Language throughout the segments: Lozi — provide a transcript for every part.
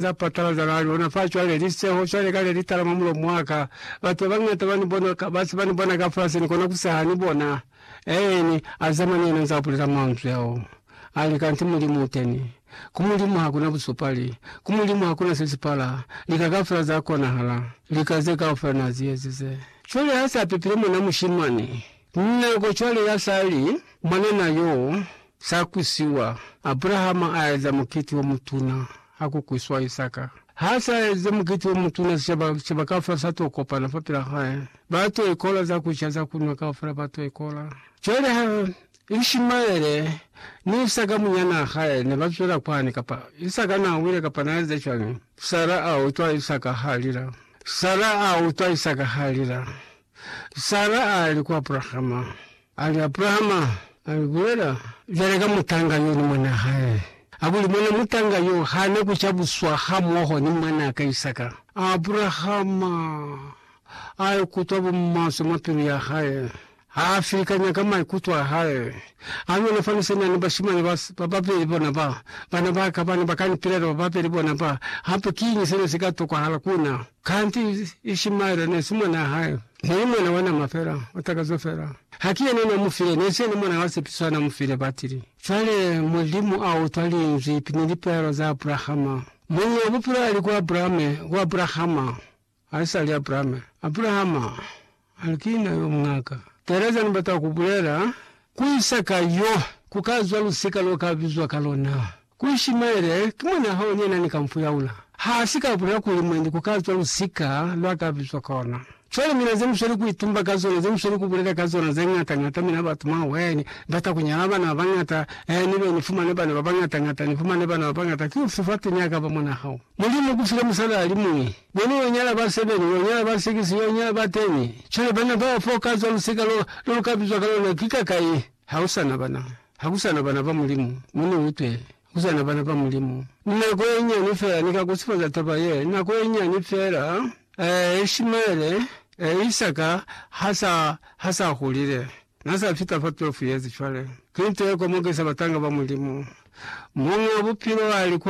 za patala za la luna fa cwale li seho cwale kale li tala mwa mulomo wa ka. Batu ba bañata ba ni bona, ba se ba ni bona kafasi, ni kona ku seha ni bona. Eeni, a zama ni yena nzaa bulela manzwi ao, a li, Kanti Mulimu u teni. Ku Mulimu ha kuna busupali. Ku Mulimu ha kuna se si pala. Lika kaufela za konahala. Lika ze kaufela na zi ezize. Cwale ha se a pepile mwanaa mushimani. Nako cwale ya sa li mwanana yo sa kwisiwa, Abrahama a eza mukiti o mutuna ha ku kwiswa Isaka. Ha sa eze mukiti o mutuna, sicaba, sicaba kaufela sa to kopana fa pila hae. Ba to ikola za ku ca, za ku nwa, kaufela ba to ikola. Cwale ha Ishimaele ni Isaka munyanaa hae ne ba zwela kwani, kapa Isaka na wile kapa na eza cwañi, Sara a utwa Isaka ha lila. Sara a utwa Isaka ha lila. Sara ali ku Abrahama, ali, Abrahama, ali, bulela cwale ka mutanga yo ni mwanaa hae, kakuli mwana mutanga yo hana ku cabuswa hamoho ni mwanaa ka Isaka. Abrahama a ikutwa bumaswe mwa pilu ya hae, ha filikanya ka maikuto a hae, a nuna fani se na ni bashimani ba, ba babeli bona ba, bana ba ka, bana ba ka ni pilela ba babeli bona ba, hape kiñi se ne si ka tokwahala ku na? Kanti Ishimaele nesi mwanaa hae, neli mwana wa nama fela, wa takazo fela. Haki yena na mufile, nesi yena mwana wa sepiso hana mufile batili. Cwale Mulimu a utwa linzwi ni lipeelo za Abrahama. Muñi wa Bupilo ali ku Abrahame, ku Abrahama, haisali Abrahame. Abrahama, Hali ki na yo muñaka. Tereza ni bata ku bulela, Ku isa ka yo, ku ka zwa lusika lo ka bizwa ka lona. Ku Ishimaele, ki mwan'a hao ni yena ni ka mu fuyaula. Ha si ka bulela kuli mwendi ku ka zwa lusika lwa ka bizwa ka ona. Cwale mina ze mu sweli ku itumba ka zona, ze mu sweli ku bulela ka zona ze ñata ñata, mina batu mwa hwee, ni bata ku nyala bana ba bañata, ee, ni be ni fumane bana ba bañata ñata, ni fumane bana ba bañata. Ki ufi fatuñ'a ka ba mwan'a hao? Mulimu kufile musala alimuñwi. Mwenu yo nyala ba sebene, yo nyala ba sikisi, yo nyala ba teni. Cwale bana bao foo ka zwa musika lo, lo lu ka bizwa ka lona, ki ka kai? Ha ku sa na bana. Ha ku sa na bana ba Mulimu. Mu ni utwe. Ha ku sa na bana ba Mulimu. Ni nako ye nyani fela, ni ka kusifaza taba ye, nako ye nyani fela. Ee, Ishimaele, ee, Isaka ha sa, ha sa hulile. Na sa fita fa 12 yezi cwale. Ki nto ye komokisa batanga ba Mulimu. Muñ'a Bupilo a li ku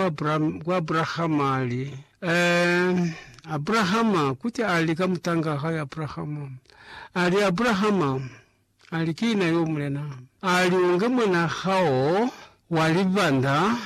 Abrahama, a li, Ee, Abrahama, kuti a li ka mutang'a hae Abrahama, a li, Abrahama, a li, Ki na yo, Mulena. A li, U nge mwan'a hao wa libanda,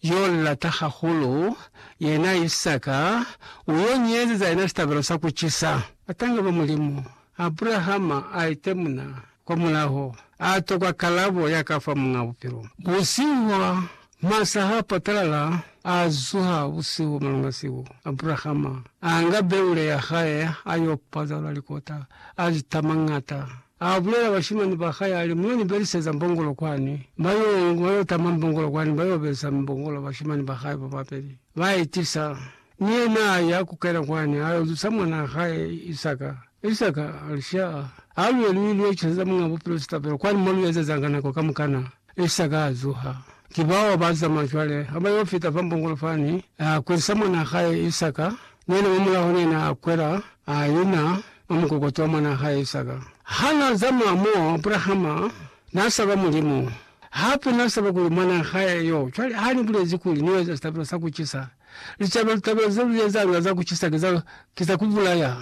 yo u lata hahulu, yena Isaka, u yo ni ezeza yena sitabelo sa ku cisa. Batanga ba Mulimu Abrahama a itemuna kwa mulaho, a tokwa kalabo ya ka fa Muñ'a Bupilo. Busihu bwa masa ha patalala, a zuha busihu malunga siku, Abrahama a nga beule ya hae a y'o pazalula likota, a li tamañata. A bulela bashimani ba hae, a li, Mu yo ni beliseza mbongolo kwani. Ba y'o ba y'o tama mbongolo kwani, ba y'o belisa mbongolo bashimani ba hae ba babeli. Ba i tisa Mi yena aya kukena kwani, ayo zusa mwanaa hae Isaka. Isaka ali, Sha, ha luye lu ilo iceza Muñaa Bupilo sitabelo, kwani mo lu ezeza ka nako kamukana. Isaka azuha. Ki bao ba zama cwale, ha ba yo fita fa mbongolo fani, a kwelisa mwanaa hae Isaka, ni yena mwa mulaho ni yena a kwela, a ina mwa mukokoto wa mwanaa hae Isaka. Ha na zama mo, Abrahama na saba Mulimu, hape na saba kuli mwanaa hae yo. Cwale, ha ni bulezi kuli ni yo eza sitabelo sa ku cisa, Licaba litaba ze lu ezanga za ku cisa ki za, ki za ku bulaya.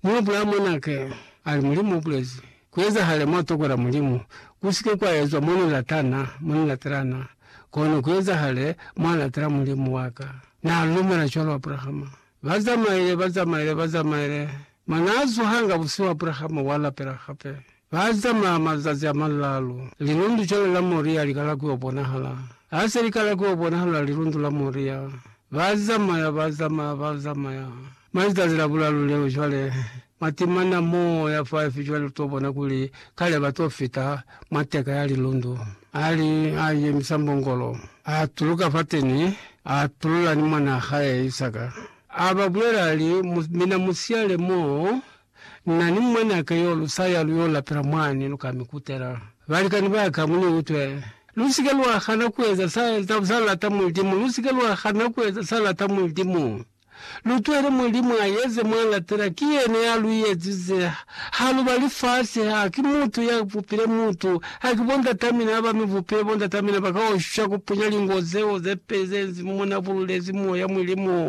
Mi Abrahama mwanake a li, Mulimu u bulezi, Ku ezahale mwa tokola Mulimu, ku si ke kwa ezwa mo ni latana, mo ni latelana, kono ku ezahale mwa latela Mulimu wa ka. Na lumela cwalo Abrahama. Ba zamaile, ba zamaile, ba zamaile, mwa na zuhanga busihu Abrahama wa lapela hape. Ba zamaa mazazi a malaalu, lilundu cwale la Moria li kala ku yo bonahala. Ha se li kala ku yo bonahala lilundu la Moria, ba zamaya, ba zamaya, ba zamaya. Mwa lizazi la bulaalu leo cwale, mwa timana mo ya faifi cwale lu to bona kuli kale ba to fita mwa teka ya lilundu. A li, a yemisa mbongolo, a tuluka fateni, a tulula ni mwanaa hae Isaka. A ba bulela a li, Mu, mina mu siyale mo. Na ni mwanaka yo lu sa ya lu yo lapela mwani, lu ka mi kutela. Balikani ba ka, mu ni utwe. Lu si ke lwa hana ku eza sa, sa lata Mulimu. Lu si ke lwa hana ku eza sa lata Mulimu. Lu twele Mulimu a eze mwa latela. Ki yena ya lu ezize. Ha lu ba lifasi. Ha ki mutu ya bupile mutu. Ha ki bondatamina ha ba mi bupile. Bondatamina ba ka oshwa ku punya lingo zeo ze peli ze nzi mo na bululezi Moya, Mulimu.